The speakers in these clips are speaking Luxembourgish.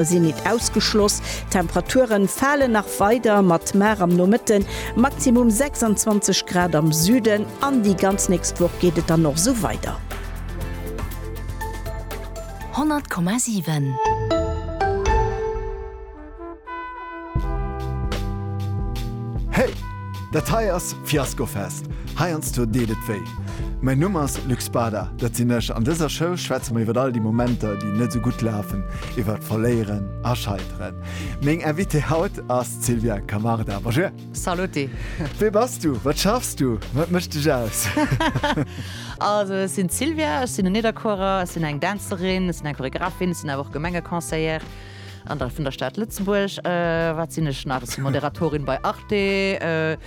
sinn nit ausgeschloss. D'Temperaturen falen nach weider mat mar am Nomëtten Maximum 26 Grad am Süden an déi ganz nächst Woch geet et dann och sou weider. 100,7. Hey! Dat hei ass Fiaskofest! Heiansdo deet et wéi. Mäin Numm ass Luc Spada, dat sinn ech. An dëser Show schwätze mer iwwer all déi Momenter, déi net esou gutt lafen, iwwer Verléieren a Scheiteren. Meng Invitée haut ass d'Sylvia Camarda. Bonjour! Saluti! Wee bass du? Wat schaffs du? Wat mécht dech aus? Also, ech sinn d'Sylvia, ech sinn en Nidderkuerer, ech sinn eng Dänzerin, ech sinn eng Choreographin, ech sinn awer och Gemengeconseillère. An da vun der Stad Lëtzebuerg, wat sinn ech nach? Ech si Moderatorin bei Arte,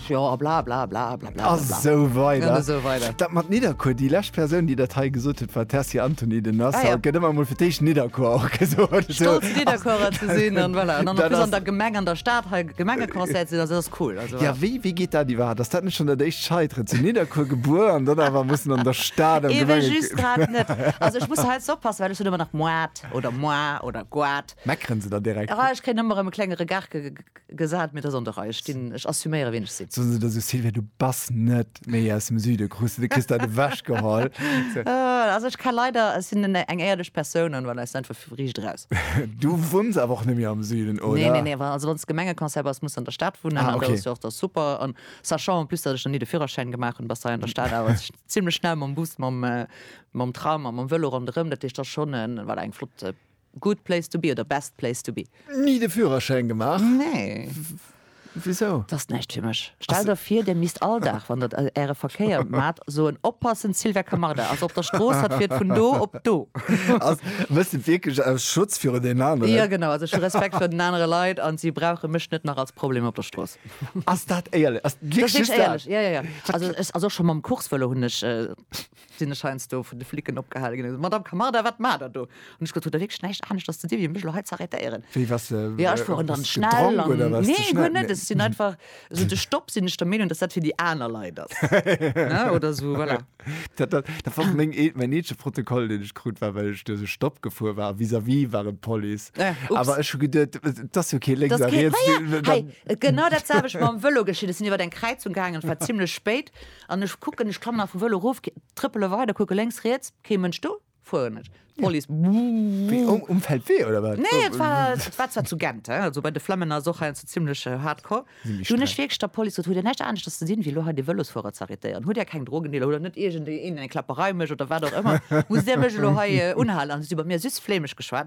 jo a blablabla. A sou weider. Dat mat Nidderkuer, déi lescht Persoun, déi dat hei gesot huet, war d'Tessy Antony. Den ass haut, gëtt ëmmer emol fir d'éischt Nidderkuer och gesot. Stolz Nidderkuerer ze sinn an voilà. An dann an der Gemeng, an der Stad hei Gemengeconseiller ze sinn, also dat ass cool. Jo, wéi geet dat iwwerhaapt? Ass dat net schonn dat éischt Scheiteren? Zu Nidderkuer gebuer an dann awer mussen an der Stad am Gemengeconseil. Eben just grad net. Also ech muss hei jetzt oppassen, well ech hunn ëmmer nach Moite. Goat oder Moi oder Goat. Meckeren se da direkt? Ah, ech kréien ëmmer erëm e klenge Regard ge gesat, mee et ass an der Rei. Ech stinn, ech assuméieren, wien ech sinn. Soen se da sou, Sylvia, du bass net méi aus dem Süde, krus de, du kriss dat ewechgeholl. Also ech ka leider, ech sinn en, eng éierlech Persoun an voilà, ech sinn einfach riicht eraus. Du wunns awer och net méi am Süden, oder? Nee, nee, nee, wa, also wann s Gemengeconseiller bass, muss s an der Stad wunnen. Ah, An dat ass okay. jo och da super. An sachant en plus, datt ech nach ni de Führerschäin gemaach hunn, bass hei an der Stad awer zimlech schnell mam Bus, mam, Mam Tram a mam Vëlo ronderëm, dat heescht ass schonn e, voilà, eng flott Good place to be oder Best place to be. Ni de Führerschäin gemaach? Nee. Wisou? Dat ass näischt fir mech. Stellt der vir, der misst all Dag, wann der Äre Verkéier maacht, soen, Oppassen, Sylvia Camarda ass op der Strooss, hatt fiert vun do op do. Also méchs de et wierklech aus Schutz viru den aneren? Jo, genau. Also ech hu Respekt vir den anere Leit an si brauche mech net nach als Problem op der Strooss. Ass dat éierlech? Ass dat wierklech just dat? Dat ass wierklech éierlech, jo, jo, jo. Also et ass och schonn mam Coursevëlo hunn ech. sinn ech heiansdo vun de Flicken opgehale ginn, Madame Camarda, wat maacht Der do? An ech gesot, Hutt Der wierklech näischt anescht als ze dinn, wéi mech elo hei ze arrêtéieren? Wéi, waars de, jo, ech fueren dann hues schnell gedronk an, oder waars de nee, schnell? guer net, ech sinn einfach, esou de Stopp sinn ech der Meenung, dass dat fir déi aner Leit ass, ne, oder esou, voilà. Dat, dat, dat war meng ee, mäin eenzege Protokoll, deen ech krut, war, well ech duerch e Stopp gefuer war a vis-à-vis war et d'Police. Äh, ups. Awer ech hu geduet, et ass jo kee lénks Das a geht, riets, ja, ja, dann, hei, genau dat selwecht mam Vëlo geschitt. Ech sinn iwwert eng Kräizung gaangen, et war zimlech spéit, An ech kucken, ech klammen einfach wëll erof, trëppele weider, kucke lénks, riets, kee Mënsch do, fueren ech. D'Police, Wéi, um Feldwee oder wat? Nee, et war, et war zwar zu Gent, hein, also bei de Flemmen ass och heiansdo zimlech hardcore. Sinn méi Du hunn ech streng. wierklech der Police gesot, Hutt Dir näischt aneschters ze dinn, wéi elo hei dee Vëlosfuerer ze arrêtéieren? Hutt Dir keng Drogendealer, hutt Der net iergendeen eng Kläpperei mécht oder wat och ëmmer? Musst Dir mech elo hei unhalen? An si hu bei mir süss flämesch geschwat.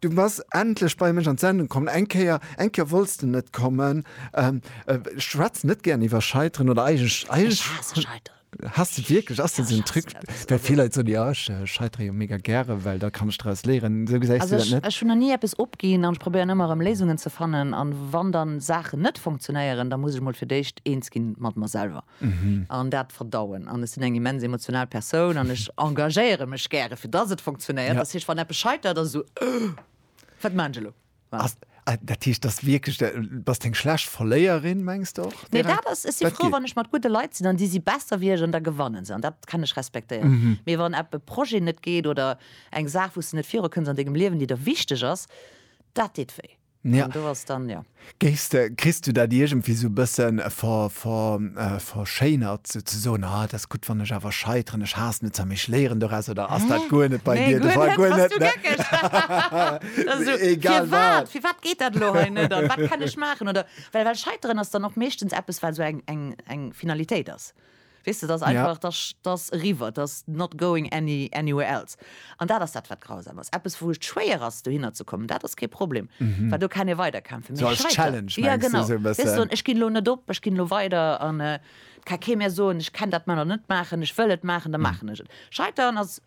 Du bass endlech bei mech an d'Sendung kommen. Eng Kéier, eng Kéier wollts de net kommen. Ähm, ech schwätzen net gären iwwer Scheiteren oder eigentlech, Ech eigentlech haasse Scheiteren. Haass de wierklech? Ass dat esou en Truc? Well vill Leit soen, jo, ech scheitere jo mega gäre, well da kann ech draus léieren. Esou gesäis Also du dat ech, net? ech hunn nach ni eppes opginn an ech probéieren ëmmer erëm Léisungen ze fannen. An wann dann Saachen net funktionéieren, da muss ech mol fir d'éischt eens ginn mat mer selwer. an dat verdauen an ech sinn eng immens emotional Persoun an ech engagéiere mech gäre fir dass et funktionéiert, dass heescht wann eppes scheitert ass esou wat maachen ech elo. Dat heescht dass wierklech de, bass de eng schlecht Verléierin mengs de och? Nee dat ass, ech si frou wann ech mat gudde Leit sinn an déi si besser wéi ech an da gewannen se an dat kann ech respektéieren, mee wann epp e Projet net geet oder eng Saach wou s de net virukënns an dengem Liewen déi der wichteg ass, dat deet wéi. An do ass dann, jo. Géifs de, kriss du dat iergendwéi sou e bëssen verschéinert, sou ze soen, ah, et ass gutt, wann ech awer scheiteren, ech haassen et zwar, mee ech léieren doraus, oder ass dat guer net bei dir de Fall? Nee, guer net, bass du geckeg? Oder sou, firwat, firwat geet dat elo hei net an wat kann ech maachen? Oder, well Scheiteren ass dann och meeschtens eppes, wat sou eng Finalitéit ass. Weess de, 't ass einfach, 't ass, 't ass eriwwer, 't ass not going any, anywhere else. An dat ass dat, wat grausam ass. Eppes, wou et schwéier ass, dohinner ze kommen, dat ass kee Problem, well do kann ee weiderkämpfen. Mee als Challenge, mengs du, esou e bëssen? Jo, genau. Wéi soen, ech ginn elo net op, ech ginn elo weider an et ka kee mir soen, ech kenn dat Manner net maachen, ech wëll et maachen, da maachen ech et. Scheiteren ass,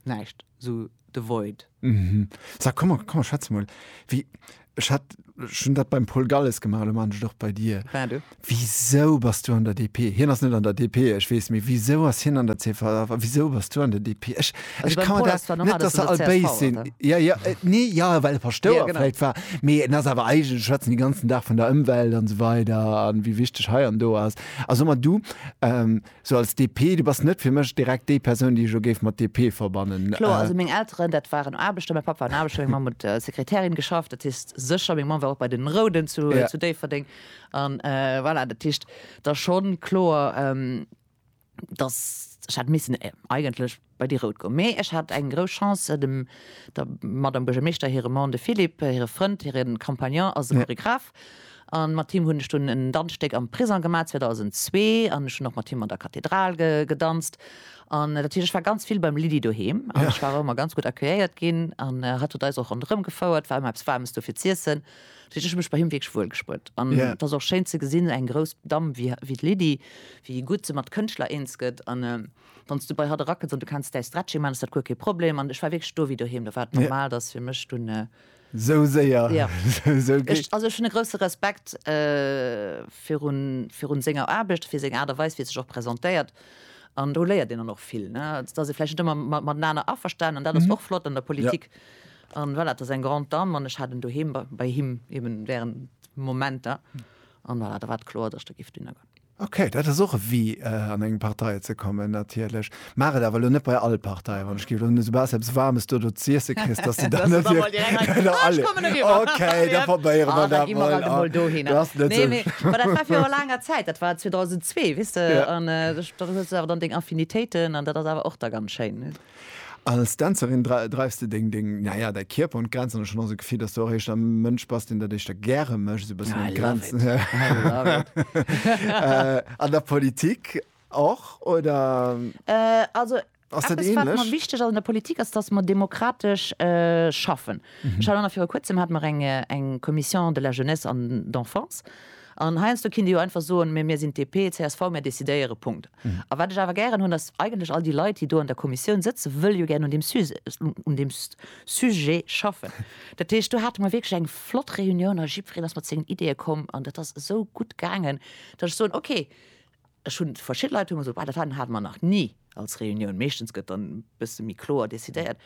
Näischt, sou de Void. Mhm. Sa, komm mer, komm mer schwätze mol. Wéi, ech hat, ech hunn dat beim Paul Galles gemaach, elo maachen ech et och bei dir. Ben, du? Wisou bass du an der DP? Hien ass net an der DP, ech weess, mee wisou ass hien an der csv a wisou bass du an der DP? Ech, ech kann mer dat, net dass se all béis sinn, jo, jo, nee, jo, well e Paschtouer vläicht war, mee en ass awer eigentlech, schwätzen dee ganzen Dag vun der Ëmwelt an esou weider an wéi wichteg hei an do ass. A so mer, du, Sou als DP, du bass net fir mech direkt déi Persoun, déi ech elo géif mat DP verbannen. Kloer, also meng Elteren, dat waren Aarbechter, mäi Papp war en Aarbechter, meng Mamm huet als Sekretärin geschafft, dat heescht sécher, meng Mamm war och bei den Rouden zu Déifferdeng an voilà, dat heescht da schonn kloer, dass ech hätt missen eigentlech. Bei déi rout goung. Mee ech hat eng grouss Chance, dem der Madame Buergermeeschter hire Mann, de Philippe, hire Frënd, hire Compagnon ass e Choregraph an mat him hunn ech dunn en Danzstéck am Prisong gemaach 2002 an ech hunn och mat him an der Kathedral gedanzt an natierlech ech war ganz vill beim Lydie doheem an ech war och ëmmer ganz gutt accueilléiert ginn an hatt huet eis och ronderëm gefouert, war ëmmer eppes Waarmes do fir z'iessen. Dat heescht, ech hu mech bei him wierklech wuel gespruet an et ass och schéin ze gesinn, eng grouss Damm wéi d'Lydie, wéi gutt se mat Kënschtler eens gëtt an. wann s du bei hatt erakënns an du kenns däi Stretching man, ass dat guer kee Problem. An ech war wierklech do wéi doheem, do war et normal, datt fir mech dunn. Esou séier, esou gutt. Ech, also ech hunn e grousse Respekt virun, virun senger Aarbecht, fir seng Aart a Weis, wéi e sech och presentéiert. An do léiert een dann och vill, ne. Et ass ee vläicht net ëmmer matenaner averstanen, an dat ass och flott an der Politik. An voilà, et ass eng grande dame an ech hat en doheem bei him eeben während Momenter. An voilà, da war et kloer, datt ech do géif dunn ergoen. Ok, dat ass och e Wee an eng Partei ze kommen natierlech. Maach et awer elo net bei all Partei, wann ech géif elo soubass eppes Waarmes dodo z'iesse kriss, dass de dann net fir. Ok, da probéiere mer dat emol. Du ass net esou. Nee, mä dat war viru laanger Zäit, dat war 2002, weess de, an do hues de awer dann deng Affinitéiten an dat ass awer och da ganz schéin. Als Dänzerin dreifs de deng, deng, naja, däi Kierper un d'Grenzen. An ech hunn och esou d'Gefill, dass du och éischter e Mënsch bass, deen dat éischter gäre mécht, esou e bëssen un d'Grenzen. I love it, I love it. An der Politik och, oder ass dat ähnlech? Also, eppes, wat mer wichteg ass an der Politik, ass, dass mer demokratesch schaffen. Ech hat och nach viru Kuerzem, hate mer eng Commission de la Jeunesse an d'Enfance. An heiansdo kinnt ee jo einfach soen, Mee mir sinn d'DP, csv, mir decidéieren. Punkt. A wat ech awer gären hunn, ass, Eigentlech all déi Leit, déi do an der Kommissioun sëtzen, wëlle jo gären un deem Suse, un deem Sujet schaffen. Dat heescht, do hate mer wierklech eng flott Reunioun a jiddwereen ass mat sengen Ideeë komm an dat ass esou gutt gaangen, datt ech soen, Okay, Ech hunn verschidde Leit hu mer gesot, dat hate mer nach ni als Reunioun. Meeschtens gëtt dann e bësse méi kloer decidéiert.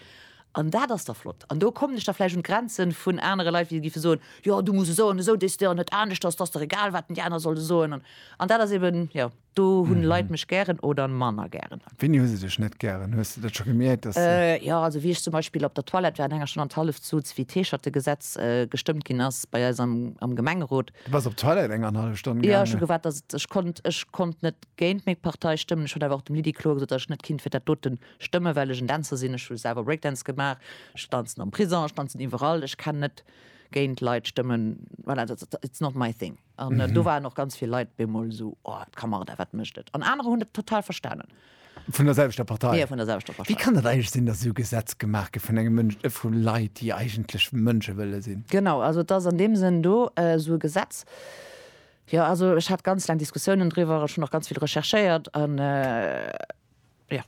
An dat ass da flott. An do kommen ech da vläicht un d'Grenze vun anere Leit, wéi giffe soen, jo du muss esou an esou decidéieren, net anescht, ass ass der egal wat déi aner solle soen. An dat ass eben, jo do hunn Leit mech gären oder manner gären. Wéini hu se dech net gären? Hues de dat scho gemierkt, dass se. Jo, also wéi ech zum Beispill op der Toilette war an enger Stonn an d'Halleft suz, wéi d'Heescherte-Gesetz gestëmmt ginn ass bei eis am Gemengerot, Du bass op Toilette eng an hallef Stonn gaangen? Jo, ech hu gewaart, dass et, ech konnt, ech konnt net géint meng Partei stëmmen. Ech hunn awer och dem Lydie kloer gesot, dass ech net kinnt fir dat doten stëmmen, well ech en Dänzer sinn. Ech hu selwer Breakdance gemaach, ech danzen am Prison, ech danzen iwwerall. Ech kenn net géint Leit stëmmen, voilà, dat, dat, it's not my thing. An do waren och ganz vill Leit bemol esou, oh, d'Camarda, wat mécht et? An anerer hunn et total verstanen. Vun der selwechter Partei? Jo, vun der selwechter Partei. Wéi kann dat eigentlech sinn, datt esou Gesetz gemaach gëtt vun engem Mënsch, vu Leit, déi eigentlech Mënsche wëlle sinn? Genau, also et ass an deem Sënn do esou e Gesetz. Jo, also ech hat ganz laang Diskussiounen driwwer, ech hunn och ganz vill recherchéiert an, jo,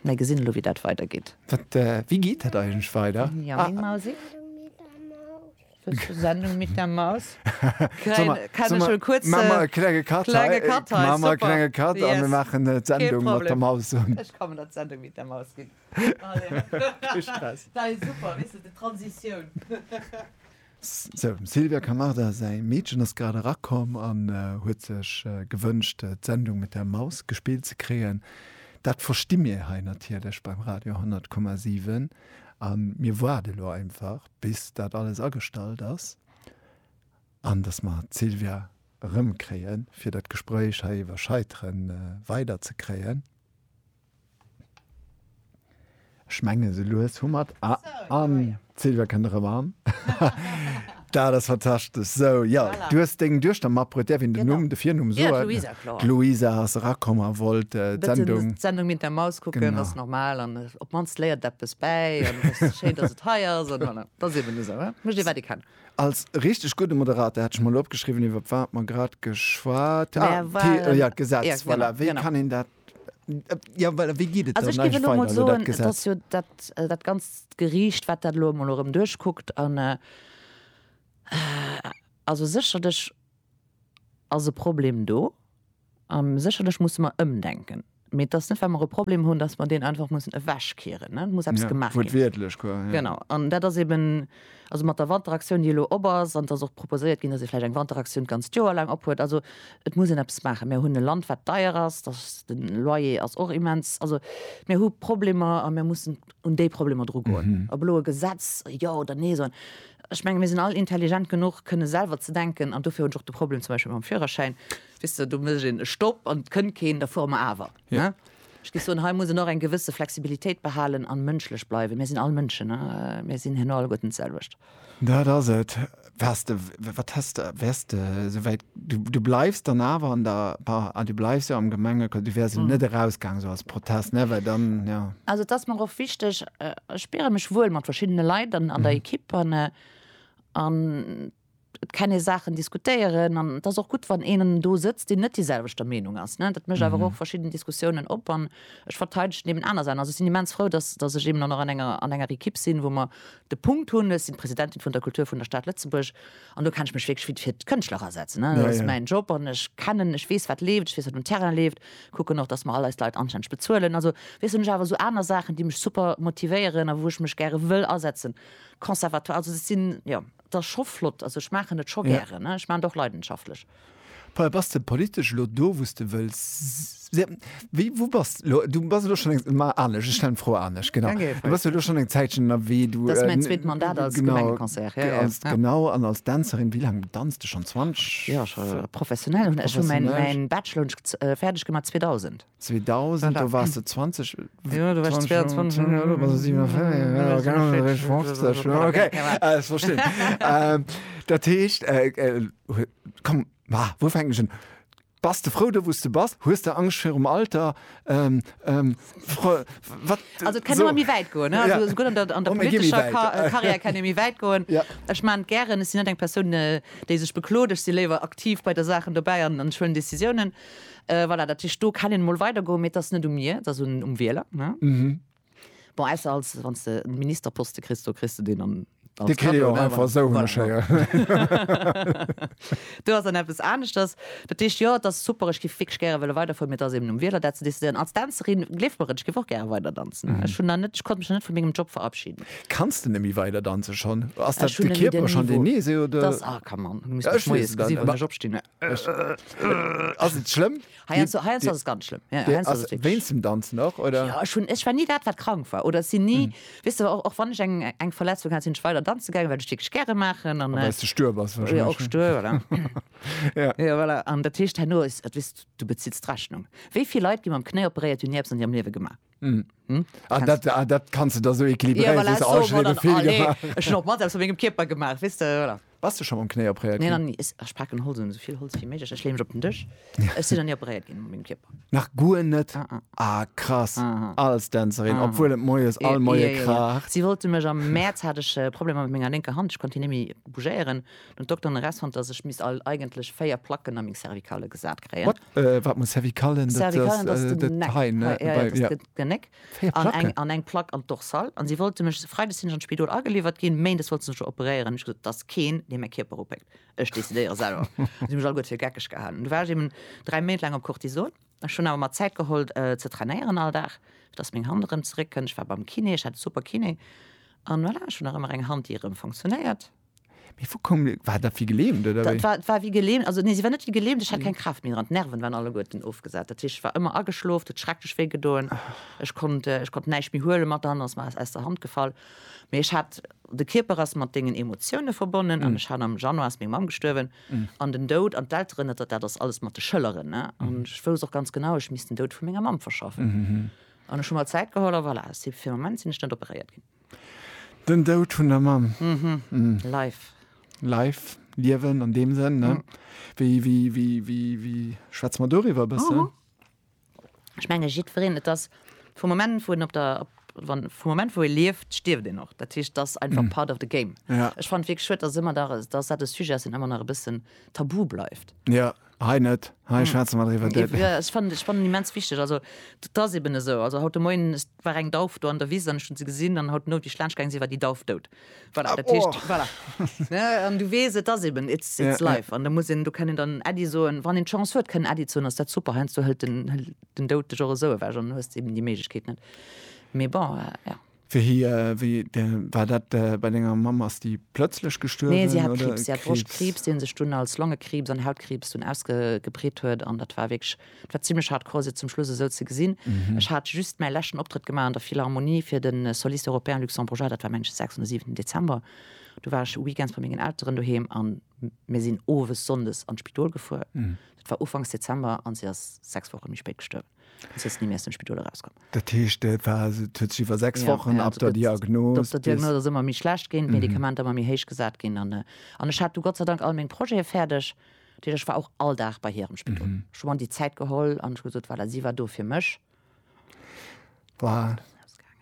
mä gesinn elo, wéi dat weidergeet. Wat, wéi geet dat eigentlech weider? Jo, meng Mausi. Sendung mit der Maus. Klenge Kat an mir maachen d'Sendung mat der Maus. Ech kann dat d'Sendung mit der Maus ginn. Dat ass super, weess de, d'Transitioun. Sou, dem Silvia Camarda säi Meedchen ass grad erakomm an huet sech gewënscht, d'Sendung mit der Maus gespillt ze kréien. Dat versti mir hei natierlech beim Radio 10,7 an mir waarde lo einfach. bis dat alles agestallt ass an datt mer d'Sylvia erëmkréien, fir dat Gespréich hei iwwer Scheitere weiderzekréien. Ech menge esou lues hu mer et. Ah, an d'Sylvia kënnt erëm an. Dat ass fantastesch. Sou, jo, du hues deng Duechter matbruet. Däerf een den Numm, de Virnumm soen? Jo, d'Luisa, kloer. D'Luisa ass erakomm a wollt d'Sendung. D'Sendung Mit der Maus kucken, ass normal. An op mannst léiert eppes bäi schéin, dass et hei ass voilà. Da si mir esou mécht ee wat ee kann. Als richteg gudde Moderator hat ech mol opgeschriwwen, iwwer wat mer grad geschwat Gesetz voilà. Wéi kann een dat Ja well wéi geet et dann eigentlech weider elo dat Gesetz? Also ech géif elo mol soen, et ass jo dat dat ganzt Geriicht, wat dat elo emol erëm duerchkuckt an also sécherlech ass e Problem do. A sécherlech musse mer ëmdenken. Mee et ass net, well mer e Problem hunn, datt mer deen einfach mussen ewechkeeren. Et muss eppes gemaach ginn. Wuertwiertlech, quoi. Genau. An dat ass eben, also mat der Wanteraktioun, déi elo op ass, an et ass och proposéiert ginn, datt ee vläicht eng Wanteraktioun d'ganzt Joer laang ophuet. Also et muss een eppes maachen. Mer hunn e Land, wat deier ass. De Loyer ass och immens. Also mir hu Problemer a mir mussen. un déi Problemer dru goen, ob elo e Gesetz jo oder nee soen. Ech menge mir sinn all intelligent genuch kënne selwer ze denken an dofir hunn ech och de Problem zum Beispill mam Führerschäin, weess de, do mécht een e Stopp an et kënnt keen, da fuere mer awer. Ech géif soen, hei muss een och eng gewësse Flexibilitéit behalen a mënschlech bleiwen. Mir sinn all Mënschen, mir sinn herno alleguerten d'selwecht. Dat ass et. Wars de, wat häss de, wärs de esou wäit, du, du bleifs dann awer an der, pa, ah, du bleifs jo am Gemenge, du wärs jo net erausgaangen esou als Protest, ne, well dann, jo. Also et ass mer och wichteg, ech spiere mech wuel mat verschiddene Leit an der Ekipp an, an et kann ee Saachen diskutéieren an et ass och gutt, wann een do sëtzt, deen net déi selwechter Meenung ass, ne, dat mécht awer och verschidden Diskussiounen op an ech verteidegen eben aner Saachen. Also ech sinn immens frou, dass, dass ech eben dann och an enger, an enger Ekipp sinn, wou mer De Punkt hunn, ech sinn d'Presidentin vun der Kultur vun der Stad Lëtzebuerg an do kann ech mech wierklech fir fir d'Kënschtler asetzen, ne. Dat ass mäin Job an ech kennen, ech weess wat leeft, ech weess wat um Terrain leeft, kucken och, datt mer all eis Leit anstänneg bezuelen. Also weess, hunn ech awer esou aner Saachen, déi mech super motivéieren a wou ech mech gäre wëll asetzen. Conservatoire, also dat sinn, jo, et ass scho flott, also ech maachen et scho gären, ne, ech maachen et och leidenschaftlech. Paul, bass de politesch elo do, wou s de wëlls si? Wéi, wou bass de elo? Du bass elo schonn eng, ma anescht, ech stellen d'Fro anescht, genau. Danke, Här Fritz. Du bass jo elo schonn eng Zäitchen ënnerwee, du, Dat ass mäin zweet Mandat als genau, Gemengeconseiller, ja, ja, als, ja. genau, an als Dänzerin, wéi laang danz de schonn? 20, Jo, scho professionell. Ech hu mäin, professionell. mäin Bachelor hunn ech fäerdeg gemaach 2000. 2000, do wars de 20. Jo, do war ech 22. Hm, elo bass de 57. Hm, okay, ech verstinn. Dat heescht, komm, ma wou fänken ech un? Bass de frou do, wou s de bass? Hues de Angscht virum Alter? Fro, wat, sou. Also et kann ëmmer méi wäit goen, ne? Also souguer an der, an der politescher Karriär kann ee méi wäit goen. Ech man et gären, ech sinn net eng Persoun, déi sech beklot. Ech si léiwer aktiv bei de Saachen dobäi an huelen Decisiounen. Voilà, dat heescht, do kann een emol weidergoen, mee et ass net u mir, et ass um Wieler, ne? Bon, ausser als, wann s de en Ministerposte kriss, do kriss de deen dann als Cadeau, ne? Dee kritt ee jo och einfach esou, hunn ech héieren. Do ass dann eppes aneschters. Dat heescht, jo, et ass super, ech géif wierklech gäre wëlle weiderfueren, mee et ass eben um Wieler, dat ze decidéieren. Als Dänzerin, gleeft mer et, ech géif och gäre weider danzen. Ech hunn nach net, ech konnt mech nach net vu mengem Job verabschiden. Kanns de net méi weider danzen schonn? Ass dat de Kierper schonn, deen, nee, se, oder? Dass, ah, come on, du muss mech moies gesi wann ech opstinn. ass et schlëmm? Heiansdo ass et ganz schlëmm. Wéinst dem Danzen och oder? Jo, ech hunn, ech war ni dat, wat krank war oder ech sinn ni, weess de, och wann ech eng eng Verletzung hat, sinn ech weider danze gaangen, well ech wierklech gäre maachen an. Well s de stuer bass warscheinlech. Jo, och stuer, voilà. Jo. Jo, voilà. An dat heescht, herno ass, et, weess, du bezills d'Rechnung. Wéi vill Leit gi mam Knéi operéiert, hunn ni eppes an hirem Liewe gemaach? Mm. Hm? Ah, dat, ah, dat kannst du da so equilibréieren. Ja, voilà, oh, so, oh, dann, oh, nee. Ech op mat aus mégem Kierper gemaach wis du, voilà. Was du schon am Knéi opréiert? Nee, dann, is, ach, packen Holz so viel Holz wie méiglech. Ech leem mech op den Dësch. Ech si dann nie opréiert ginn mégem Kierper. Nach guer net? Ah, ah. ah krass. Ah, ah. Als Dänzerin, ah, obwohl et moies all moie ja, ja, kracht. Ja. Si wollte mech am März hat ech äh, Probleme mat menger linker Hand. Ech konnte nie méi bougéieren. Den Dokter Neres fonnt dass ech misst all eigentlech 4 Placken a meng Cervicale gesat kréien. What? Äh, wat muss Cervicalen? Dat Cervicalen ass ass de de Geneck. hei, ne? Hei, ja, ja, Bei, dat ass ja. de Geneck. 4 An Placken? eng, an eng Plack an d'Dorsal. An si wollte mech, Freides sinn ech an d'Spidol ageliwwert ginn, Méindes wollte se mech operéieren. Ech gesot, et ass keen, dee mäi Kierper opéckt. Ech decidéiere selwer. si hu mech alleguer fir geckeg gehalen. Du war ech eben 3 Méint laang op Cortison. Ech hunn awer mer Zäit geholl ze trainéieren all Dag, fir dass meng Hand erëm zeréck kënnt. Ech war beim Kiné, ech hat e super Kiné. An voilà, ech hunn nach ëmmer eng Hand, déi erëm fonctionéiert. Mee vu koum de, war dat wéi gelähmt oder Dat wéi? war, war wéi gelähmt, also nee, si war net wéi gelähmt, ech hat keng Kraaft méi dran, d'Nerven waren alleguerten ofgesat, dat heescht, ech war ëmmer ageschlof, et huet schrecklech wéi gedoen, ech konnt, ech konnt näischt méi huelen, mat an ass mer aus, aus der Hand gefall. Mee ech hat, de Kierper ass mat dengen Emotioune verbonnen an ech hat, am Januar ass meng Mamm gestuerwen an den Doud an d'Elteren, dat, dat ass alles mat de Schëlleren, ne, an ech wousst och ganz genau, ech misst den Doud vu menger Mamm verschaffen an ech hu mer Zäit geholl a voilà, si, fir de Moment sinn ech net operéiert ginn. Den Doud vun der Mamm. Life. Life, Liewen an deem Sënn, ne? Wéi, wéi, wéi, wéi, wéi schwätze mer doriwwer e bëssen? Ech menge jiddwereen, et ass vum Moment, wou en op der, op, wann, vum Moment, wou ee lieft, stierft een och. Dat heescht, et ass einfach part of the game. Ja. Ech fannen et wierklech schued, dass ëmmer nach, dass dat e Sujet ass, deen ëmmer nach e bëssen tabu bleift. Ja. Hei net, hei schwätze mer driwwer. Jo, ech fannen, ech fannen immens wichteg, also dat ass eben esou. Also haut de Moien war eng Dauf do an der Wiss an ech hunn se gesinn an haut de Moien, wéi ech laanscht gaange sinn, war déi Dauf dout. Voilà, dat heescht, voilà, ne? An du weess, et ass eben, it's, it's life. An da muss een, do kann een dann Äddi soen, wann een d'Chance huet, kënnen Äddi ze hunn, ass dat super. Heiansdo hëlt den, hëlt den Doud dech och esou ewech an du hues eben déi Méiglechkeet net. Mee bon, jo. Wéi war dat bei denger Mamm? Ass déi plëtzlech gestuerwen? Nee, si hat Kriibs. Si hat Broschtkriibs, dee sech dunn als Longekriibs an Hautkriibs dunn ausgebreet huet. An dat war wierklech, dat war zimlech hardcore, se zum Schluss esou ze gesinn. Ech hat just mäi leschten Optrëtt gemaach an der Philharmonie fir de Soliste Européen Luxembourgeois, dat war mengen sechsten oder siwenten Dezember. Du war ech weekends bei mengen Elteren doheem a mir sinn owes sonndes an d'Spidol gefuer. Dat war ufanks Dezember a si ass sechs Woche méi spéit gestuerwen. ass jetzt ni méi aus dem Spidol erauskomm. Dat heescht et war et huet sech iwwer 6 Ja, Wochen ja, ab also der gëtt- Diagnos Op der bis- Diagnos ass ëmmer méi schlecht ginn, d'Medikamenter ëmmer méi héich gesat ginn an äh, an ech hat du Gott sei Dank all meng Projete fäerdeg. Dat heescht, ech war och all Dag bei hir am Spidol. Ech hu mer an déi Zäit geholl an ech hu gesot, voilà, si war do fir mech. Wow. Ausgaangen.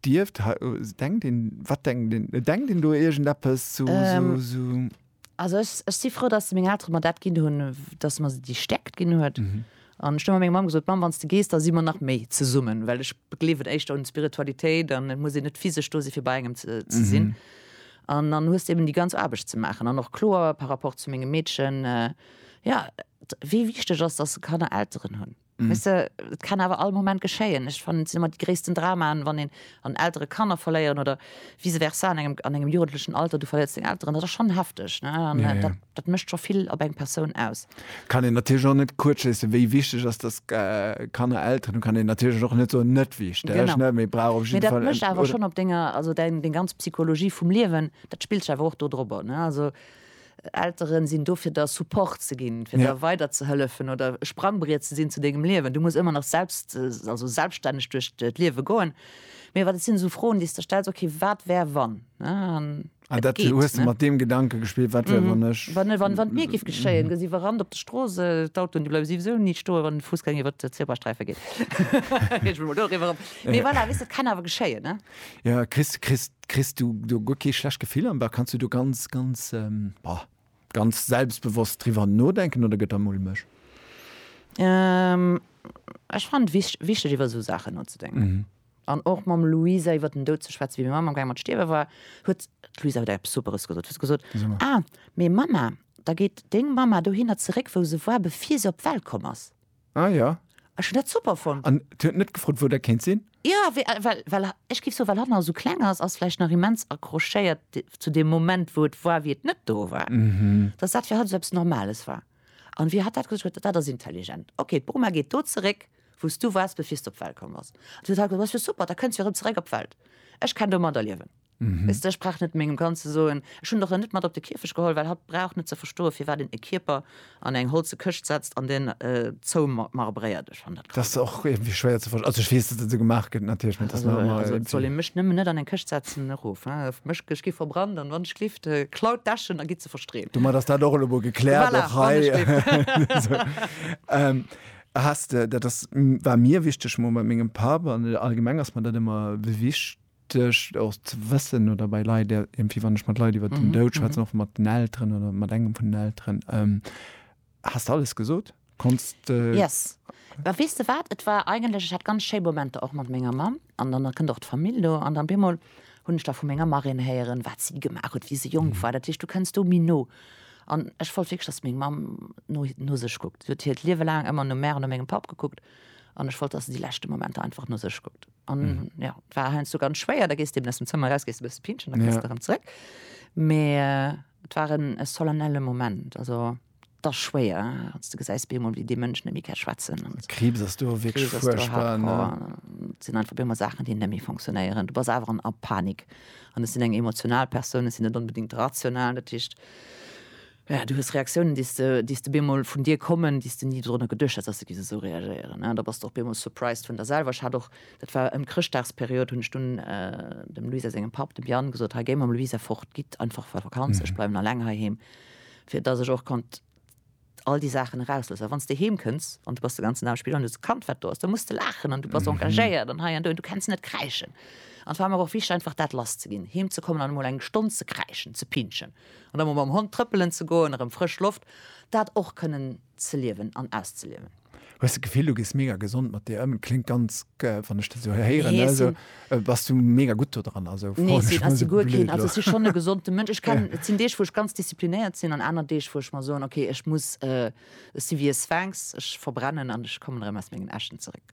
Dierft hei, oh, s- denkt een, wat denkt een, et denkt een do iergendeppes zu, Ähm. su, su. Also ech, ech si frou, datt meng Eltere mer dat ginn hunn, w- datt mer se déi Stärkt ginn huet. Mhm. An ech hunn ëmmer menger Mamm gesot, Mamm, wann s de gees, da si mer nach méi zesummen, well ech gleewen éischter un Spiritualitéit an et muss een net physesch do si fir bei engem ze, ze sinn. Mhm. An dann hues de eben déi ganz Aarbecht ze maachen an och kloer par rapport zu mengem Meedchen, äh, ja, d- wéi wichteg ass, datt se Kanner Elteren hunn. Weess de, et kann awer all Moment geschéien. Ech fannen, et sinn ëmmer déi gréissten Dramaen, wann een an Eltere Kanner verléieren oder vice versa an engem, an engem jugendlechen Alter, du verléiers deng Elteren. Dat ass schonn hefteg, ne? An dat, dat mécht scho vill op eng Persoun aus. Kann een natierlech och net kuerzschléissen, wéi wichteg ass, dass Kanner Elteren hunn, kann een natierlech och net soen, net wichteg, ne? Mee brauch op jidde Fall, oder? Mee dat mécht awer schonn op denger, also deng, deng ganz Psychologie vum Liewen, dat spillt sech awer och do drop op, ne? Also Elteren sinn do fir der Support ze ginn, fir der weider ze hëllefen oder e Sprangbriet ze sinn zu dengem Liewen. Du muss ëmmer nach selbst, also selbststänneg duerch d'Liewe goen. Mee wat et sinn esou Froen, déi s de stells, okay, wat wär wann, ne? An dat du, hues du mat deem Gedanke gespillt, wat wär wann ech. Wann, wann, wann et mir géif geschéien, gëss iwwerrannt op de Strooss, d'Autoen, déi bleiwe siwesou ni stoen, wann de Foussgänger iwwer d'Zebrasträife geet. Ech mol do eriwwer op. Mee voilà, weess de, et kann awer geschéien, ne? Jo, kriss, kriss Kriss du do guer kee schlecht Gefill am Bauch? Kanns du do ganz, ganz, bah, ganz selbstbewosst driwwer nodenken oder gëtt der mulmeg? Ech fannen et wich, wichteg iwwer esou Saachen nozedenken an och mam Luisa iwwer den Doud ze schwätzen. Wéi meng Mamm am Gaang mat stierwe war, huet d'Luisa huet eppes Superes gesot. Huet se gesot, Ah, mee Mamma, da geet deng Mamma dohinner zeréck, wou se war, bevir se op d'Welt komm ass. Ah ja. Ech hun dat super fonnt. An huet net gefrot wou dat kéint sin? Jo, well, well ech géif soen, well hatt nach esou kleng ass, ass vläicht nach immens accrochéiert zu deem Moment, wou et war, wéi et net do war, dass dat fir hatt esou eppes Normales war. An wéi hatt dat gesot huet, dat ass intelligent. Ok, d'Boma geet do zeréck, wou s du wars, bevir s du op d'Welt komm bass. An du huet hatt gesot, dat ass jo super, da kënns du jo erëm zeréck op d'Welt. Ech kenn domadder liewen. Mhm. Ech brauch net mengem Kand ze soen, ech hunn der en net mat op de Kierfech geholl, well hatt brauch net ze verstoen, firwat een e Kierper an eng holze Këscht setzt an deen äh, zoumarbréiert. Ech fann dat grad. Dat ass och iergendwéi schwéier ze verstoen. Also ech weess, datt et esou gemaach gëtt natierlech, mee et ass nach ëmmer iergendwéi. Et soll ee mech nëmmen net an eng Këscht setzen, erof hein, ech mech, ech gi verbrannt an wann ech gleeft, äh, klaut d'Äschen a gitt se verstreeën. Domat ass dat och elo mol gekläert, voilà, och hei. Esou. Ähm, Has de, dat ass, war mir wichteg, mol mat mengem Papp, an allgemeng ass mer dat ëmmer wichteg, Duerch och ze wëssen oder bei Leit, irgendwie wann ech mat Leit iwwert den Doud schwätzen, och mat den Elteren oder mat engem vun den Elteren, Has de alles gesot? Konns de. Yes. Mä weess de wat, et war eigentlech, ech hat ganz schéi Momenter och mat menger Mamm an dann kënnt och d'Famill do an dann op eemol hunn ech da vu menger Marraine héieren, wat si gemaach huet, wéi se jonk war. Dat heescht, du kënns do méi no. An ech wollt wierklech, dass meng Mamm no, no sech kuckt. Si huet hiert Liewe laang ëmmer no mär an no mengem Papp gekuckt an ech wollt, dass se déi leschte Momenter einfach no sech kuckt. an mhm. ja, war heinz so ganz schwéier da gest dem dem Zimmer raus gest bist Pinchen dann ja. daran zurück mehr äh, waren es solennelle Moment also das schwéier als du geseist Bemol wie die Menschen nämlich schwatzen und Krebs hast du wirklich Krebs furchtbar, ne? sind einfach immer Sachen die nämlich funktionieren du bist einfach ab Panik und es sind eng emotional Personen sind nicht unbedingt rational natürlich Jo, du hues Reaktiounen, déi s de bemol vun dir kommen, déi s de ni dorunner geduecht häss, dass se géife sou reagéieren. Da bass de och bemol surprised vun der selwer. Ech hat och, dat war ëm d'Chrëschtdagsperiod, hunn ech dunn dem Luisa sengem Papp, dem Yann, gesot, Hei, géi mam Luisa fort, gitt einfach a Vakanz, ech bleiwen alleng heiheem, fir dass ech och konnt all déi Saachen erausloossen. Well wann s de heem kënns an du bass de ganzen Dag am Spill an du hues e Kand, wat do ass, da muss de laachen an du bass engagéiert an hei an do, du kenns net kräischen. An et war mer och wichteg, einfach dat lass ze ginn, heem ze kommen an emol eng Stonn ze kräischen, ze pinschen. An da mol mam Hond trëppelen ze goen, erëm frësch Loft, dat och kënnen ze liewen an auszeliewen. Hues de d'Gefill, du gees mega gesond mat dir ëm? Kléngt ganz, wann ech dat esou héieren, Nee, ech sinn. esou, bass du mega gutt do dran? Also, Nee, froen ech ech sinn, mol ech sinn esou guer keen, blöd also ech elo. sinn schonn e gesonde Mënsch. Ech kennen, et sinn Deeg, wou ech ganz disziplinéiert sinn an aner Deeg, wou ech mer soen, okay, ech muss, ech si wéi e Sphinx, ech verbrennen an ech kommen erëm aus mengen Äschen zeréck.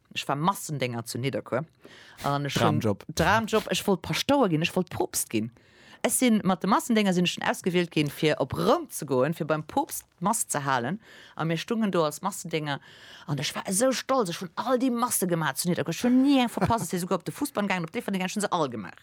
Ech war Massendénger zu Nidderkuer an ech hunn Dramjob. Dramjob, ech wollt Paschtouer ginn, ech wollt Poopst ginn. Ech sinn mat de Massendénger sinn ech dunn ausgewielt ginn fir op Roum ze goen, fir beim Poopst d'Mass ze halen a mir stungen do als Massendénger an ech war esou stolz, ech hunn all déi Masse gemaach zu Nidderkuer, ech hunn ni eng verpasst, ech si souguer op de Fussball gaangen, op d'Déifferdeng gaangen, ech hunn se all gemaach.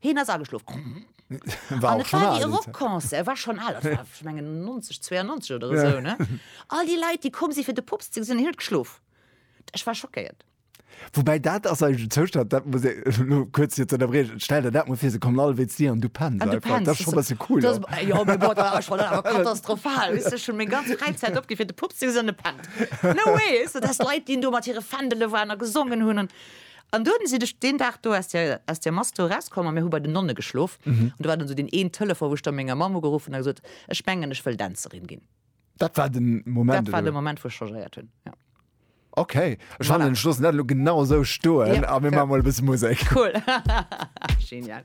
Heen ass ageschlof. An et war déi e Rockconcert, e war schonn al, ech mengen 1992 oder esou, ne? All déi Leit, déi komm si fir de Pops ze gesinn, hien huet geschlof. Ech war schockéiert. Woubäi dat ass eigentlech en Zoustand, dat muss ee, elo kuerz fir ze ënnerbriechen, stell der dat mol vir, se kommen all wéi zu dir an du penns einfach. Dat ass schonn e bësse cool, oder? Dat ass, jo, mee bon, dat ass schonn awer katastrophal, weess de, ech hunn meng ganz Fräizäit opginn, fir de Pops ze gesinn an e pennt. No way, weess de, dass Leit, déi do mat hire Fändele waren a gesongen hunn an. An dunn sinn ech deen Dag do aus der, aus der Mass do erauskomm a mir hu bei den Nonne geschlof. An do war dann esou deen een Telefon, wou ech da menger Mamm ugeruff hunn a gesot, Ech mengen, ech wëll Dänzerin ginn. Dat war de Moment, Dat war de Moment, wou ech changéiert hunn, jo. Okay, ech fannen, ech loossen dat elo genau esou stoen a mir maache mol e bësse Musek. Cool. Genial.